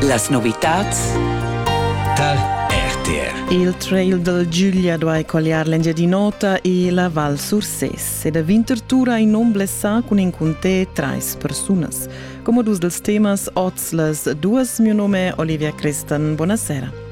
Las novitads dal RTR. Il trail dal Giulia duai colliar l'Engiadin'Ota e la Val Surses ed a Winterthur in um blessà cun in cunté trais persunas. Come dus dels temas oz las duas mio nome Olivia Crestan. Buonasera.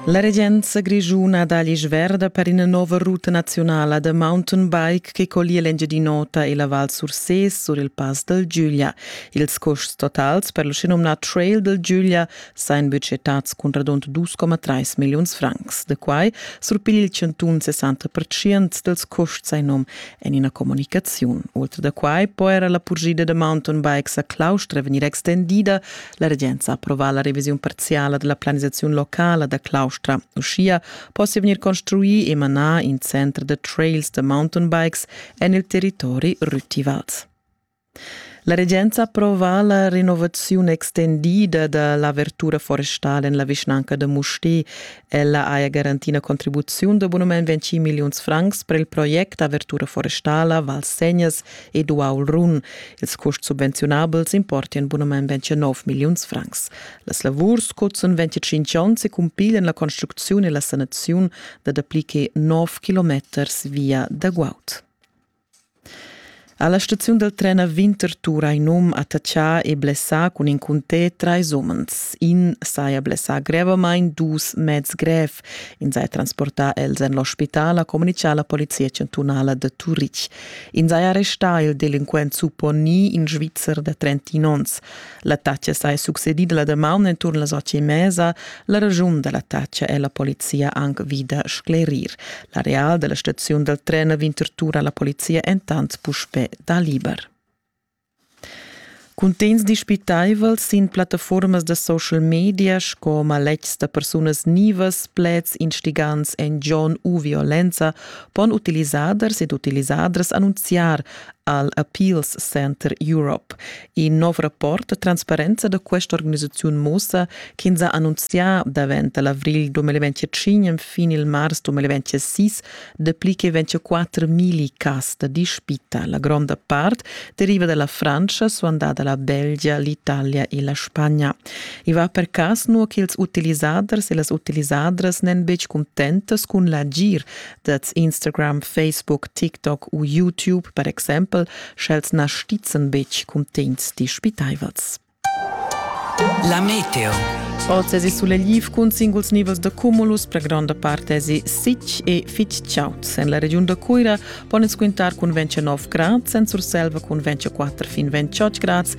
La regenza grischuna dà l'isch verda per ina nova ruta naziunala da mountain bike che collia l'Engiadin'Ota e la Val Sursés sur il Pass dal Giuglia. Ils custs totals per l'uschenumnà Trail dal Giuglia sajan budgetads cun radund 2,3 milliuns francs. Da quai surpiglia il chantun 60% dals custs in num. En ina communicaziun. Ultra da quai po era la purschida da mountain bikes a Claustra vegnir extendida. La regenza ha approvà la revisiun parziala della planisazione locala da Claustra. Uschia possia vegnir construì e manar in center da trails da mountain bikes en il territori Rüttivals. La regenza approva la renovaziun extendida da l'avertura forestal en la vischnanca da Mustér. Ella haja garantì la contribuziun d'abunament 20 milliuns francs per il project avertura forestala Val Segnas ed Uaul Run. Ils custs subvenziunabels importian abunament 29 milliuns francs. Las lavurs cuzan 25 onns e cumpiglian la construcziun e la sanaziun da dapli che 9 kilometers via da guaud. Ha la staziun dal tren a Winterthur hai num attachà e blessà cun in cuntè trais umens. In saja blessà grevamain, dus meds grev. In saja transportà els en l'ospital, ha communitgà la polizia chantunala da Turitg. In saja arrestà il delinquent supponì, in Svizzer da 31 onns. L'attacca saja succedida la damaun enturn las otg e mesa. La ragiun da l'attacca è la polizia anc vida sclerir. L'areal da la staziun dal tren Winterthur ha la polizia entant puspè da liber. Cuntegns dispitaivels sin plattaformas da social media sco maletgs da persunas nivas, pleds instigants en John u violenza pon utilisaders ed utilisadras annunziar al Appeals Center Europe. In nov rapport transparenza da questa organisaziun mussa ch'ins ha annunzià davent l'avril 2025 fin il mars 2026 dapli che 24.000 cas da dispita. La gronda part deriva dalla Francia, suandada la Belgia, l'Italia e la Spagna. I va per cas nua ch'ils utilisaders e las utilisadras n'èn betg contentas cun l'agir Dets Instagram, Facebook, TikTok u YouTube per exempel, sch'els na stizen betg cuntegns dispitaivels. La meteo. Oz esi sulegl cun singuls nivels da cumulus, per gronda part esi sitg e fitg chaud. En la regiun da Cuira pon ins quintar cun 29 grads, en Surselva cun 24 fin 28 grads